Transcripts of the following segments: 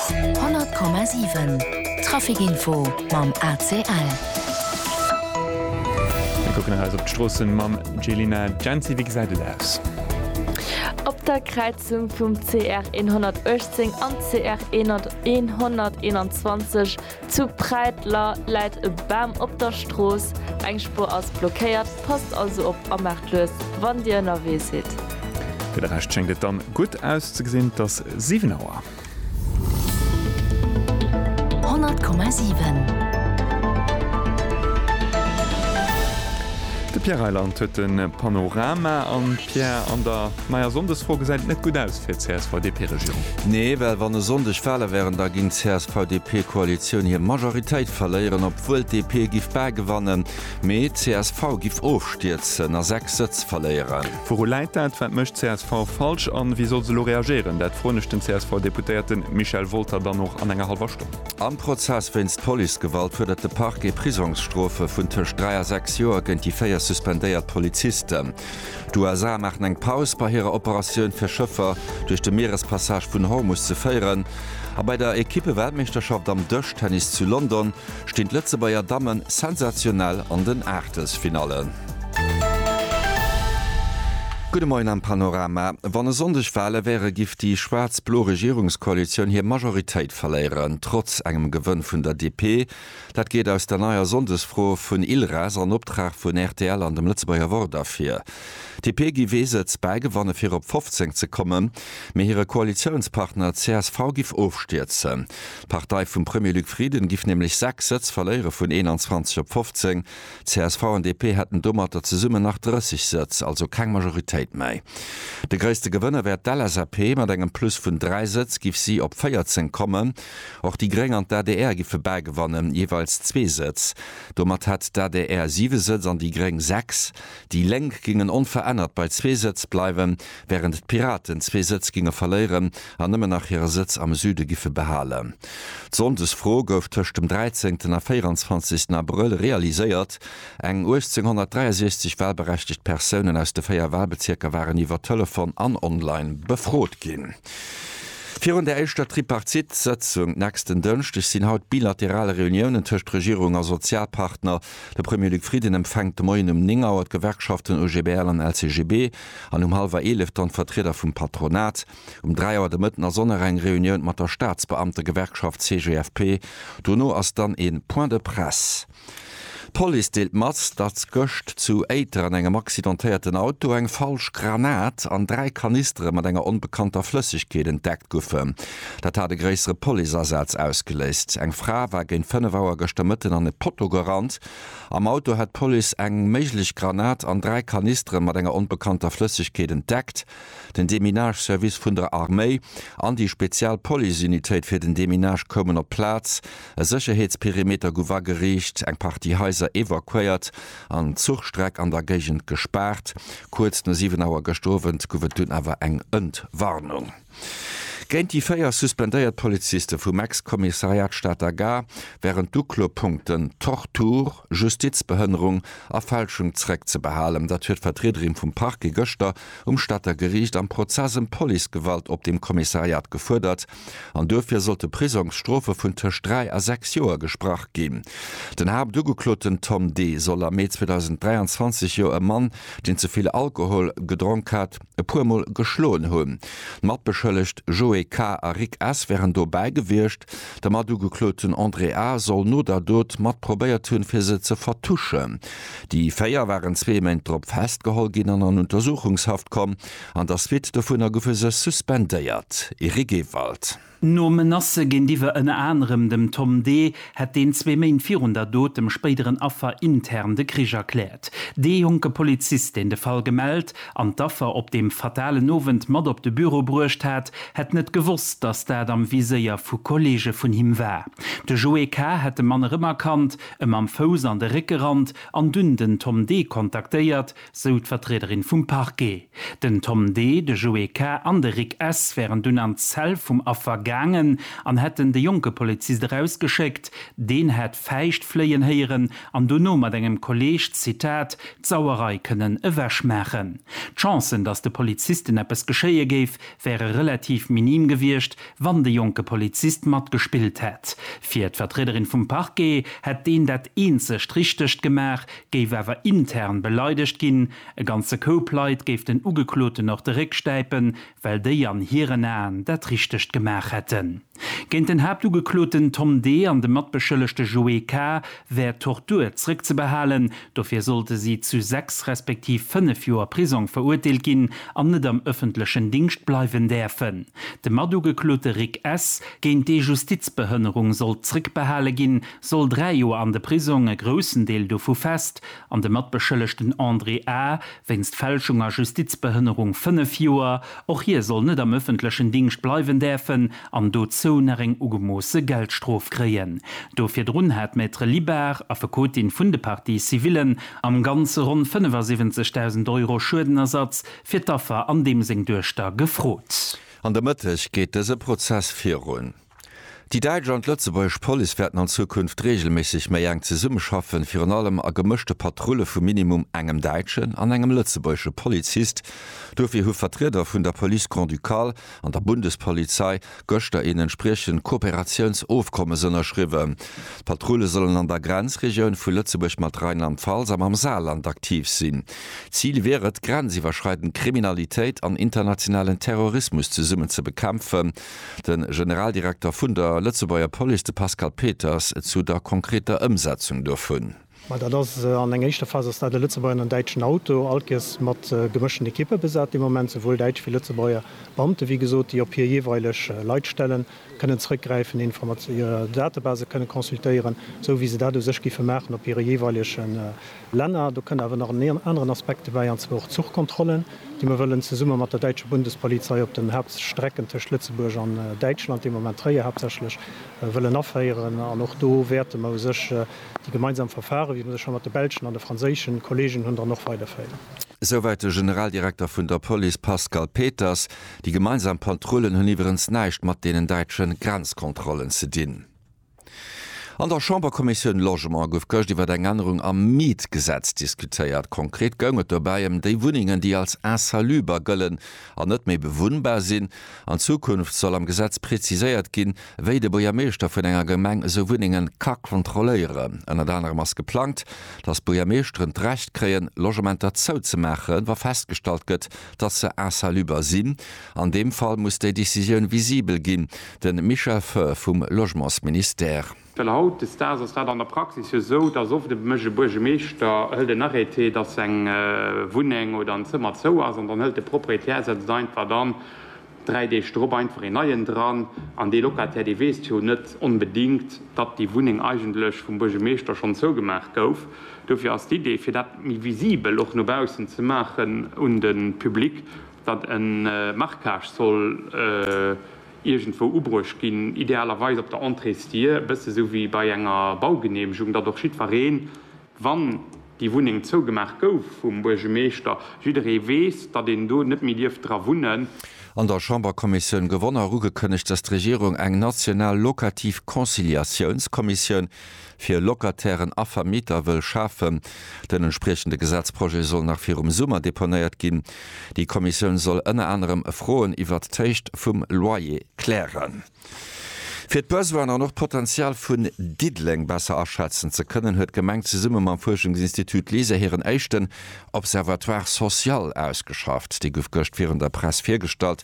100,7 Trafic Info mam ACL. Mir kucken nach eis op d'Stroossen mam Jelena Jency. Wéi gesäit et aus? Op der Kräizung vum CR 118 an CR 121 Zu Präiteler läit e Bam op der Strooss, eng Spuer ass blockéiert. Passt also op a maacht lues, wann Dir ënnerwee sidd. Fir de Rescht schéngt et dann gutt auszegesinn, et ass 7 Auer. 100,7. De Pierre Reyland huet de Panorama an Pierre an der. Maja, Sonndesfro gesäit net gutt aus fir d'CSV-DP-Regierung. Nee, well wann e Sonndeg Wale wären, da géing d'CSV-DP-Koalitioun hir Majoritéit verléieren, obwuel d'DP giff bal gewannen, mee d'CSV giff ofstierzen a 6 Sëtz verléieren. Wouru läit dat? Wat mécht csv falsch an wéi soll se elo reagéieren? Dat froen ech den CSV-Deputéierten Michel Wolter dann och an enger hallwer Stonn. Am Prozess wéinst Policegewalt fuerdert de Parquet Prisongsstrofe vun tëscht 3 a 6 Joer géint déi 4 suspendéiert Polizisten. D'USA maachen eng Paus bei hirer Operatioun fir Schëffer duerch de Mierespassage vun Hormus ze féieren a bei der Ekippe-Weltmeeschterschaft am Dëschtennis zu London stinn d'Lëtzebuerger Damme sensationell an den Aachtelsfinallen. Gudde Moien am Panorama. Wann e Sonndeg Wale wäre giff déi schwaarz-blo Regierungskoalitioun hir Majoritéit verléieren. Trotz engem Gewënn vun der DP, Dat geet aus der neier Sonndesfro vun ILRAS an Optrag vun rtl an dem Lëtzebuerger Wort ervir. D'DP giff ee Sëtz bäigewanne fir op 15 ze kommen, mee hire Koalitiounspartner csv giff ofstierzen. D'Partei vum Premier Luc Frieden giff nämlech 6 Sëtz verléiere vun 21 op 15. Csv an DP hätten domatter zesummen nach 30 Sëtz, also keng Majoritéit méi. De gréisste Gewënner wär d'LSAP, mat engem Plus vun 3 Sëtz giff si op 14 kommen. Och déi Gréng an d'ADR giffe bal gewannen, jeeweils zwee Sëtz. Domat hätt d'ADR siwe Sëtz an déi Gréng sechs. Déi Lénk gingen onverännert bei zwee Sëtz bleiwen, wärend d'Piraten zwee Sëtz ginge verléieren an nëmmen nach hire Sëtz am Süde giffe behalen. D'Sonndesfro gouf tëscht dem 13 a 24 Abrëll realiséiert. Eng 1863 walberechtegt Persounen aus de véier Walbezierker waren iwwer Telefon an online befrot ginn. Virun der éischter Tripartite-Sëtzung nächsten Dënschdeg sinn haut bilateral Reuniounen tëscht Regierung a Sozialpartner. De Premier Luc Frieden empfänkt de Moien um 9 Auer d'Gewerkschaften OGBL an LCGB an um hallwer 11 dann d'Vertrieder vum Patronat. Um 3 Auer de Mëtten ass och nach eng Reunioun mat der Staatsbeamtegewerkschaft CGFP. Dono ass dann ee Point de presse. D'Police deelt mat, datt gëscht zu Éiter an engem accidentéierten Auto eng falsch Granat an dräi Kanistere mat enger onbekannter Flëssegkeet entdeckt goufen. Dat hat e gréissere Policeasaz ausgeléist. Eng Fra war géint 5 Auer gëschter Mëtten an e Potto gerannt. Am Auto hätt d'Police eng méiglech Granat an dräi Kanistere mat enger onbekannter Flëssegkeet entdeckt. Den Deminage-Service vun der Arméi an déi spezial Policeunitéit fir den Deminage koumen op d'Plaz. E Sécherheetsperimeter guff ageriicht, eng Partie Haiser evakuéiert an d'Zuchstreck an der Géigend gespaart. Kuerz no 7 Auer gëscht Owend guff et dunn awer eng Entwarnung. Géint déi 4 suspendéiert Poliziste vum Ex-Kommissariat Stater Gare wären d'Uklopunkten Tortur, Justizbehënnerung a Fälschung zréckzebehalen. Dat huet d'Vertriederin vum Parquet gëschter um Stater Geriicht am Prozess ëm Policegewalt op dem Kommissariat gefuerdert. an duerfir sollte Prisongsstrofe vun tëscht dräi a sechs Joer gesprach ginn. Den Haaptugekloten Tom D. soll am Mee 2023 jo e Mann, deen ze vill Alkohol gedronk hat, e puer Mol geschloen hunn. D'Matbeschëllegt Joé K. a Rick S. wären dobäi gewiescht. De Matugekloten André A. soll no der Dot mat probéiert hunn, fir se ze vertuschen. Déi véier waren zwee Méint drop festgeholl ginn an an Untersuchungshaft komm. An der Suite dovunner goufe se suspendéiert. Eric Ewald. No Menacë géintiwwer ënner anerem dem Tom Dee hätt deen zwee Méint virun der Dot dem spéideren Affer intern de Krich erkläert. Dee jonke Polizist, deen de Fall gemellt an d'Affer op deem fatalen Owend mat op de Büro bruecht hat, hätt net gewosst, datt dat am Viséier vu Kolleege vun him war. De Joé K. hätt de Mann erëmerkannt, em am Fouss an de Réck gerannt an dunn den Tom Dee kontaktéiert, sou d'Vertriederin vum Parquet. Den Tom D., de Joé K. an de Rick S. wären dunn an d'Zell vum Affer gaangen an hätten de jonke Polizist erausgeschéckt. Deen hätt Fäischt fléien héieren an dono mat engem Kolleeg, Zitat, d'Sauerei kënnen ewech maachen. D'Chancen, datt de Polizisten eppes geschéie géif, wäre relativ minim gewiescht, wann de jonke Polizist matgespillt hätt. Fir d'Vertriederin vum Parquet hätt deen dat eenzegt Richtegt gemaach, géif awer intern beleidegt ginn, e ganze Koup Leit géif den Ugekloten och de Réck stäipen, well déi an hiren Aen dat Richtegt gemaach hätten. Géint den Haaptugekloten Tom D. an de Matbeschëllegte Joé K. wär Tortur zréckzebehalen, dofir sollte si zu sechs respektiv fënnef Joer Prisong verurteelt ginn an net am ëffentlechen Dingscht bleiwen däerfen. De Matugeklote Rick S. géint dee Justizbehënnerung sollt zréckbehale ginn, soll dräi Joer an de Prisong, e groussen Deel dovu fest, an de Matbeschëllegten André A. wéinst Fälschung a Justizbehënnerung fënnef Joer. Och hie soll net am ëffentlechen Dingscht bleiwen däerfen an dozou nach eng ugemoosse Geldstrof kréien. Do virdrun hat d'Maître Libard, Affekotin vun de Parties civillen, am Ganze ronn 75.000 Euro Schuedenersatz fir d'Affer an deem seng Duechter gefrot. An der Mëtteg geet dëse Prozess virun. Déi däitsch an d'lëtzebuergesch Police wäerten an Zukunft reegelméisseg méi enk zesummeschaffen, virun allem a gemëschte Patrulle vu minimum engem däitschen an engem lëtzebuergesche Polizist. Dofir hu Vertrieder vun der Police Grand-Ducale an der Bundespolizei gëschter een entspriechend Kooperatiounsofkommes ënnerschriwwen. D'Patrulle sollen an der Grenzregioun vu Lëtzebuerg mat Rheinland-Pfalz a mam Saarland aktiv sinn. Zil wier et, grenziwwerschreidend Kriminalitéit an internationalen Terrorismus zesummen ze bekämpfen. De Generaldirekter vun der Lëtzebuerger Police, de Pascal Peters, zu der konkreter Ëmsetzung dovun. Mä dat ass, an enger éischter Phas ass dat e Lëtzebuerger an en däitschen Auto, alt giess mat gemëschten Ekippe besat dee Moment, souwuel däitsch wéi Lëtzebuerger Beamte, wéi gesot, déi op hir jeeweileg Leitstellen kënnen zrëckgräifen, Informat hir Database kënnen consultéieren, esou wéi se dat u sech giffe maachen op hire jeeweilegen Länner. Do kënn awer nach en aneren Aspekt dobäi, an zwar och d'Zuchkontrollen, déi mer wëllen zesumme mat der däitscher Bundespolizei op den Hauptstrecken tëscht Lëtzebuerg an Däitschland, dee Moment Tréier haaptsächlech, wëllen aféieren. An och do wäerte mer u sech déi gemeinsam Verfare, wéi mer se scho mat de belschen an de franséische Kolleegen hunn, dann och weiderféieren. Souwäit de Generaldirekter vun der Police Pascal Peters. Déi gemeinsam Patrullen hunn iwwerens näischt mat deenen däitsche Grenzkontrollen ze dinn. An der Chamberkommissioun Logement gouf gëscht iwwer eng Ännerung am Mietgesetz diskutéiert. Konkret goung et dobäi ëm déi Wunnengen, déi als insaluber gëllen an net méi bewunnbar sinn. An Zukunft soll am Gesetz preziséiert ginn, wéi de Buergermeeschter vun enger Gemeng esou Wunnengen ka kontrolléieren. Ënnert anerem ass geplangt, dass d'Buergermeeschteren d'Recht kréien, Logementer zouzemaachen, wa festgestallt gëtt, datt se insaluber sinn. An deem Fall muss déi Decisioun visibel ginn, de Michel Foehr vum Logementsministère. Well haut des Daags ass dat an der Praxis jo esou, datt oft e mécht e Buergemeeschter hëlt en Arrêté, datt eng Wunneng oder en Zëmmer zou ass an dann hëlt de Proprietär, setzt einfach dann 3 Deeg drop einfach een neien dran an dee Locataire dee weess jo net onbedingt, datt déi Wunneng eigentlech vum Buergemeeschter schonn zougemaach gouf. Dofir ass d'Idee fir dat méi visibel och no baussen ze maachen un de Public, datt e Marquage soll iergendwou ubruecht ginn, idealerweis op der Entréesdier, e bësse sou wéi bei enger Baugeneemegung, datt och jiddwereen wann déi Wunneng zougemaach gouf vum Buergemeeschter, jidderee weess, datt een do net méi dierf dra wunnen. An der Chamberkommissioun gewonn a ugekënnegt, datt d'Regierung eng national locativ Conciliatiounskommissioun fir Locatairen a Vermieter wëll schafen. Den entspriechende Gesetzprojet soll nach virum Summer deponéiert ginn. Déi Kommissioun soll ënner anerem Froen iwwert d'Héicht vum Loyer klären. Fir d'Besoinen an och d'Potenzial vun Diddeleng besser aschätzen ze kënnen, huet d'Gemeng zesumme mam Fuerschungsinstitut LISER hiren éischten Observatoire social ausgeschafft. Dee gouf gëscht virun der Press virgestallt.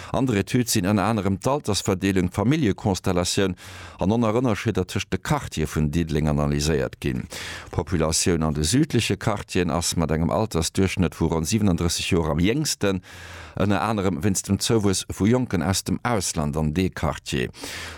An der Etüd sinn ënner anerem d'Altersverdeelung, d'Familljekonstellatioun an Onerënnerschidder tëscht de Quartiere vun Diddeleng analyséiert ginn. D'Populatioun an de südleche Quartieren ass mat engem Altersduerchschnëtt vu ronn 37 Joer am jéngsten. Ënner anerem wéinst dem Zouwuess vu Jonken aus dem Ausland an dee Quartier.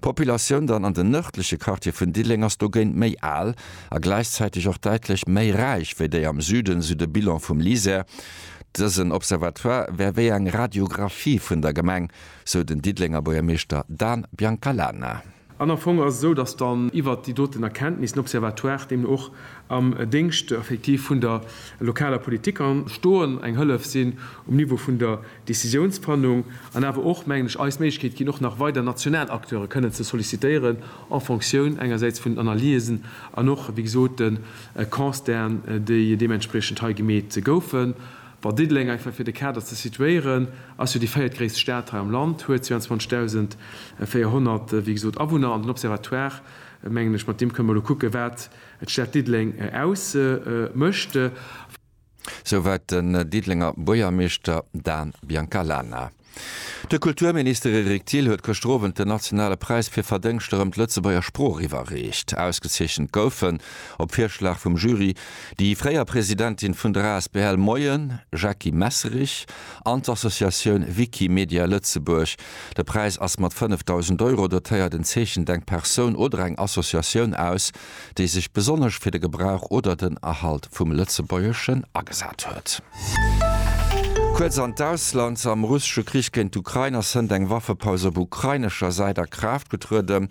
D'Populatioun dann an den nërdleche Quartiere vun Dilleng ass dogéint méi al a gläichzäiteg och däitlech méi räich wéi déi am Süden, sou de Bilan vum LISER. Dësen Observatoire wär wéi eng Radiographie vun der Gemeng, sou den Diddelenger Buergermeeschter Dan Biancalana. An am Fong ass et esou, datt dann iwwert déi doten Erkenntnis den Observatoire deemno och am Déngscht effektiv vun der lokaler Politik ka stoen, eng Hëllef sinn um Niveau vun der Décisionsfannung an awer och, mengen ech, eis d'Méiglechkeet ginn, och nach weider national Acteure kënnen ze sollicitéieren en fonctioun engersäits vun den Analysen an och, wéi gesot, de Constaten, déi deementspriechend hei gemeet goufen. Bon, Diddeleng, einfach fir de Kader ze situéieren, ass jo déi véiertgréisst Stad hei am Land, huet 22.400, wéi gesot, Awunner an den Observatoire, mengen ech, mat deem kënne mer elo kucken, wat d'Stad Diddeleng ausmécht. Souwäit den Diddelenger Buergermeeschter Dan Biancalana. De Kulturminister Eric Thill huet gëschter Owend den nationale Präis fir Verdéngschter ëm d'Lëtzebuerger Sprooch iwwerreecht. Ausgezeechent goufen, op Virschlag vum Jury, déi fréier Presidentin vun der asbl Moien, Jackie Messerich, an d'Associatioun Wikimedia Lëtzebuerg. De Präis ass mat 5.000 Euro dotéiert. En zeechent eng Persoun oder eng Associatioun aus, déi sech besonnesch fir de Gebrauch oder den Erhalt vum Lëtzebuergeschen agesat huet. Kuerz an d'Ausland, Am russesche Krich géint d'Ukrain ass hënt eng Waffepaus op ukrainescher Säit a Kraaft getruede,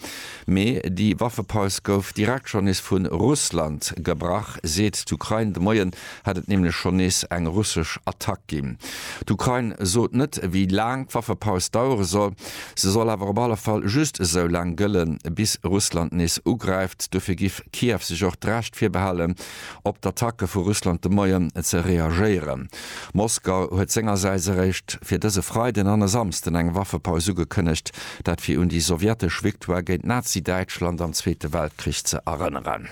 mee déi Waffepaus gouf direkt schonn nees vu Russland gebrach, seet d'Ukrain de Moien. hätt et nämlech schonn nees eng russesch Attack ginn. D'Ukrain sot net, wéi laang d'Waffepaus dauere soll. Se soll awer op alle Fall just esou laang gëllen, bis Russland nees ugräift. Dofir giff Kiew sech och d'Recht virbehalen, op d'Attacke vu Russland de Moien ze reagéieren. Moskau huet sengersäits eréischt fir dëse Freiden an e Samsden eng Waffepaus ugekënnegt, dat fir un déi sowjetesch Victoire géint Nazi-Däitschland am Zweete Weltkrich ze erënneren.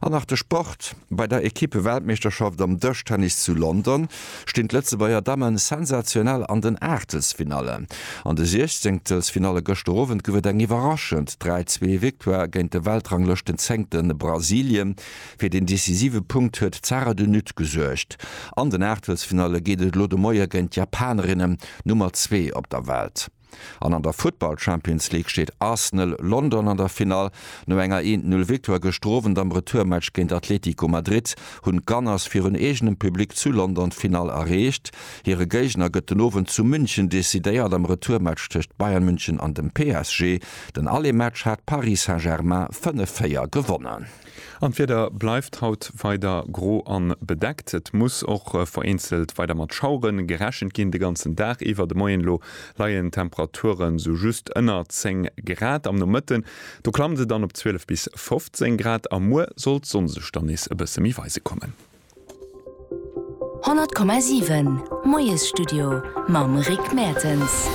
An nach de Sport, Bei der Ekippe-Weltmeeschterschaft am Dëschtennis zu London stinn d'Lëtzebuerger Damme sensationell an den Aachtelsfinallen. An de Siechzehnktelsfinalle gëschter Owend gouf et eng iwwerraschend 3 zwee Victoire géint de Weltranglëschtenzenngte Brasilien. Fir den decisive Punkt huet d'Sara de Nutte gesuergt. An den Aachtelsfinalle geet et elo de Moie géint d'Japanerinne Nummer zwee op der Welt. An an der Futtball Champions League steet Arsenal London an der Finall. No enger 'een Null' Victoire gëschter Owend am Retourmatch géint Atletico Madrid hunn d'Gunners virun eegenem Public zu London d'Finall erreecht. Hire Géigner gëtt den Owend zu München decidéiert am Retourmatch tëscht Bayern München an dem PSG. Den Aller-Match hat Paris Saint-Germain 5, 4 gewonnen. An d'Wieder bleift haut weider gro an bedeckt. Et muss och vereenzelt weider mat Schaueren gerechent ginn. De ganzen Dag iwwer, de Moien elo, leien d'Temperaturen sou just ënner 10 Grad. Am Nomëtten do klammt se dann op 12 bis 15 Grad a muer soll d'Sonn sech dann nees e bësse méi weise kommen. 100,7 Moiesstudio mam Rick Mertens.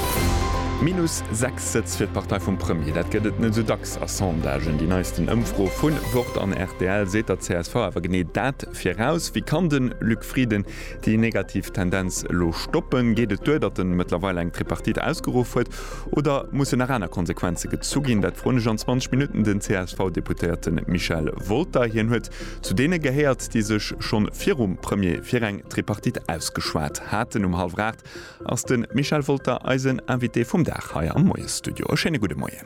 Minus 6 Sëtz fir d'Partei vum Premier, dat gëtt et net esou dacks a Sondagen. Déi neisten Ëmfro vu Wort an rtl seet der csv awer genee dat viraus. Wéi kann de Luc Frieden déi negativ Tendenz elo stoppen? Geet et duer, datt en mëttlerweil eng Tripartite ausgeruff huet oder mussen nach aner Konsequenze gezu ginn? Dat froen ech an 20 Minutten den CSV-Deputéierte Michel Wolter. Hien huet Zu deene gehéiert, déi sech schonn virum Premier fir eng Tripartite ausgeschwat haten. Um hallwer 8 ass de Michel Wolter eisen Invité vum Dag hei am Moiesstudio. E schéine gudde Moien.